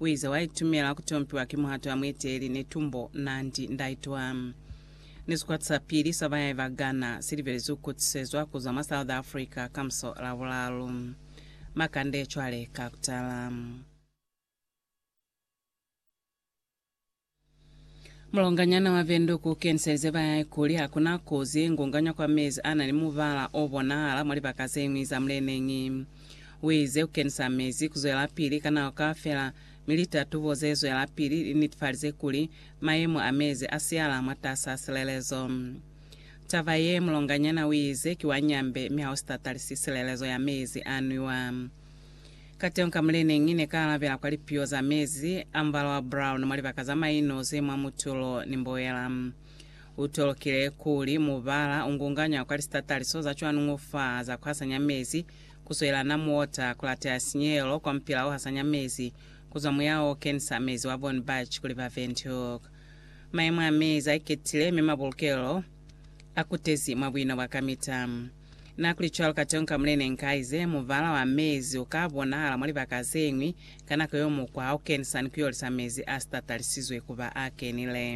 Uize, Waitumela kutompiwa ki muhato ya mueteleli ne tumbo nandi ndaitwa. Ni sikwata sa pili sa bayahi ba Ghana silibelezwi kukutisezwa kuzwa mwa South Africa kamuso Labulalu. Makande cwale ka kutala. Mulonganyana wa Windhoek u keniselize ba hae kuli ha ku na kozi ye ngonganywa kwa mezi a na ni mubala o bonahala mwa libaka ze ñwi za muleneñi. U ize ku kenisa mezi ku zwelapili ka nako kaufela, mi litatubo ze zwelapili li nitifalize kuli mayemo a mezi a siyahala mwatas'a silelezo. Taba ye, mulonganyana u ize ki wa nyambe mi ha u si tatalisisi silelezo ya mezi a nwiwa. Kateñi ka mule ne ngi ne ka alabela kwa lipiyo za mezi a mubala wa brown mwa libaka za maino ze mwa mutulo ni mboela? U tolokile kuli mubala u ngunganywa kwa lisitataliso za cwanuñu fa za ku hasanya mezi ku swelela na muota, ku lateha sinyehelo kwa mupila o hasanya mezi ku zwa muya o kenisa mezi wa Von Bach kuli ba Windhoek. Mayemo a mezi a iketile mi mabulukelo a kutezi mwa buino bwa kamita. Na kuli, Cwalo ka teñi ka mo ne ne nkaize, mubala wa mezi u ka bonahala mwa libaka ze ñwi ka nako yeo mukwa ha u kenisa ni ku yolisa mezi a si tatalisizwe ku ba a kenile.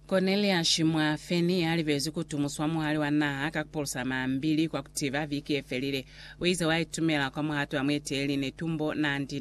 Korneliasi mwa Feni, ya libezwi ku tumuswa muhali wa naha ka ku pulusa mambili kwa ku tiba viki ye felile, u ize wa itumela kwa muhato wa mueteleli, ne tumbo naa ndi